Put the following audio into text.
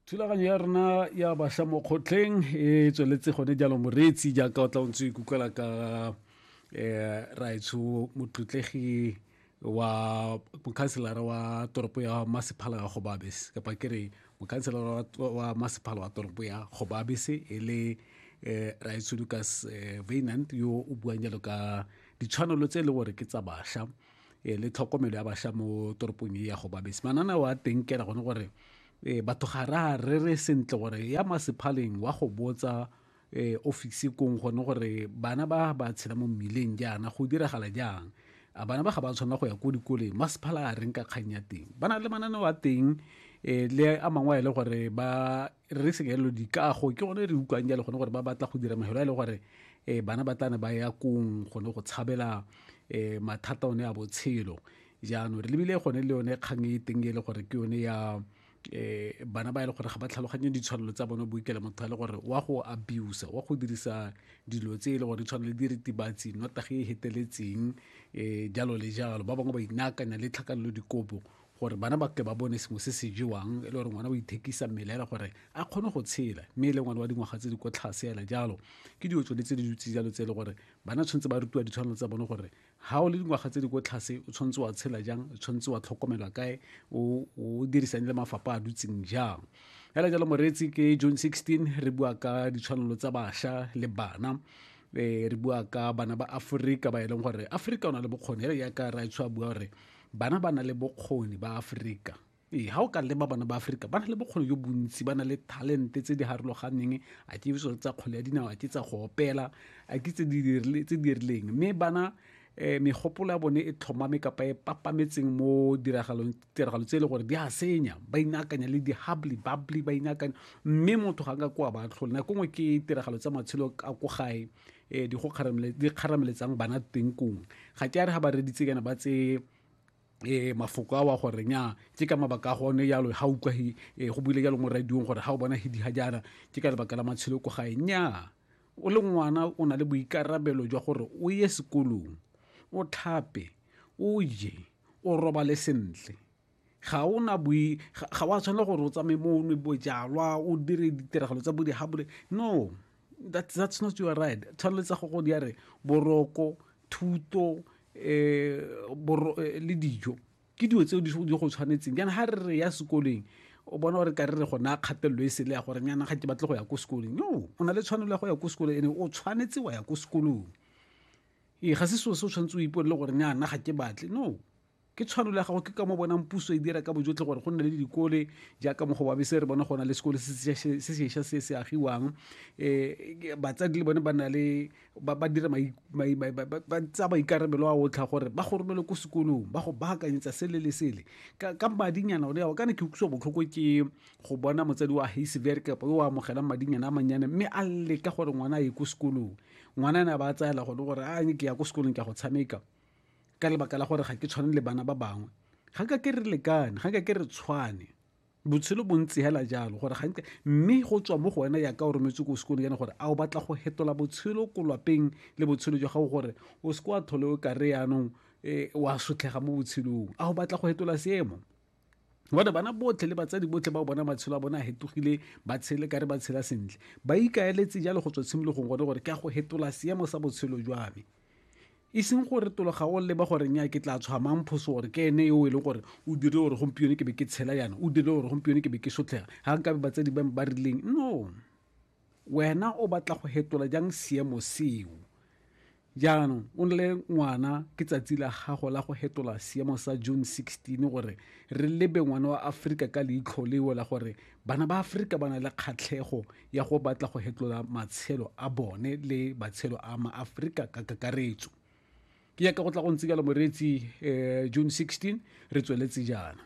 thulaganyo ya rona ya bašwa mo kgotlheng e tsweletse gone jalo moreetsi jaaka o tla o ntse o ikutlwela ka um eh, raetsho motlotlegi wa mokhanselara wa toropo ya masephala ya gobabese kapa ke re mokhanselara wa masephala wa toropo ya gobabese e le um raetsho lucas um eh, vainant yo o buang jalo ka ditshwanelo tse e le gore ke tsa bašwa e le tlhokomelo ya basha mo toropong e ya go babesi manana wa teng kela gone gore e batho ga ra re re sentle gore ya masephaleng wa go botsa e ofisi kong gone gore bana ba ba tshela mo mmileng jaana go diragala jang a bana ba ga ba tshwanela go ya ko dikoleng masephala a reng ka kgang ya teng ba na le mananeo a teng e le a mangwe a e le gore ba re re sekelo dikago ke gone re utlwang jalo gone gore ba batla go dira mahelo a e le gore um bana ba tlane ba ya kong gone go tshabela um mathata one a botshelo jaanong re lebile gone le yone kgang e teng e le gore ke yone ya um bana ba e le gore ga ba tlhaloganye ditshwanelo tsa bone boikela motho a le gore wa go abuse wa go dirisa dilo tse e le gore tshwane le diritibatsi notage e heteletseng um jalo le jalo ba bangwe ba inaakanya le tlhakanelo dikobo gore bana ba tle ba bone sengwe se se jewang e le gore ngwana o ithekisa mmele ela gore a kgone go tshela mme e le ngwana wa dingwaga tse di ko tlhase ela jalo ke dilo tsone tse di dutse jalo tse e le gore bana tshwanetse ba rutiwa ditshwanelo tsa bone gore ga o le dingwaga tse di ko tlhase o tshwanetse wa tshela jang o tshwanetse wa tlhokomelwa kae o dirisang le mafapha a dutseng jang fela jalo moreetsi ke june 16 re bua ka ditshwanelo tsa bašwa le bana eh, re bua ka bana ba aforika ba e leng gore aforika o na le bokgoni ele yaka raetsho a bua gore bana ba na le bokgoni ba aforika ee ga o ka leba bana ba aforika ba na le bokgoni jo bontsi ba na le talente tse di harologaneng a ke so tsa kgole ya dinao a ke tsa go opela a ke tse di dirileng mme bana um megopolo ya bone e tlhomame kapa e papametseng mo tiragalo tse e le gore di a senya ba inaakanya le di-hubly bubbly ba inaakanya mme motho ga nka kwa ba tlhole nako nngwe ke tiragalo tsa matshelo ka ko gae e di go kgaramele di kgarameletsang bana teng kong ga ke a re ga ba reditse kana ba tse e mafoko a wa gore nya ke ka mabaka a gone yalo ga utlwa e go buile jalo mo radiong gore ga o bona hidi ga jana ke ka lebaka la matshelo ko gae nya o le ngwana o na le boikarabelo jwa gore o ye sekolong o tlhape o je o robale sentle ga o na boi ga wa tshwanela gore o tsamaye mo o nwe bojalwa o dire ditiragalo tsa bodihabole no that's, that's not your right tshwanetse go go di ya re boroko thuto eh, boro, eh, le dijo ke dilo tseo di go tshwanetseng jaana ga re re ya sekoleng o bona gore ka re re gona kgatelelo e sele ya gore nyana ga ke batle go ya ko sekoleng no o na le tshwanelo ya go ya ko sekolong ene o tshwanetse wa ya ko sekolong ee ga se seo se o tshwanetse o ipone le gore nyana ga ke batle no ke tshwanelo ya gago ke ka mo bonang puso e dira ka bojotlhe gore go nne le dikole jaaka mo go babese re bona go na le sekole se sešwa se se agiwang um batsadi le bone ba na le ba dira ba tsa maikarabelo a otlha gore ba go romele ko sekolong ba go baakanyetsa sele le sele ka madinyana one ao kana ke utlwisa botlhoko ke go bona motsadi wa hasever kapa yo o amogelang madinyana a mannyane mme a leka gore ngwana a ye ko sekolong ngwana ne a ba a tsaela gone gore a ke ya ko sekolong ke ya go tshameka ka lebaka la gore ga ke tshwane le bana ba bangwe ga ka ke re lekane ga ka ke re tshwane botshelo bo ntse hela jalo gore ga mme go tswa mo go wena ya ka o rometse ko sekolong yana gore a o batla go hetola botshelo ko lapeng le botshelo jwa gago gore o se ko a thole o kare yaanong um wa sotlhega mo botshelong a o batla go hetola seemo gore bana botlhe le batsadi botlhe ba bona matshelo a bona a hetogile ba tshele ka re ba tshela sentle ba ikaeletse jalo go tswa tshimologong gone gore ke a go hetola seemo sa botshelo jwa me e seng gore tologa o leba gore nya ke tla tshwamang phoso gore ke ene yo e leng gore o dirile gore gompieno ke be ke tshela yana o dirile gore gompieno ke be ke sotlhega ga nkabe batsadi ba ba rileng no wena o batla go hetola jang seemo seo Jaanong o nne ngwana ke tsatsi la gago la go hetola seemo sa June 16 gore re lebe ngwana wa Aforika ka leitlho leo la gore bana ba Aforika ba na le kgatlhego ya go batla go hetola matshelo a bone le matshelo a maAforika ka kakaretso. Ke yaka go tla go ntse jalo moreetsi um June 16 re tsweletse jaana.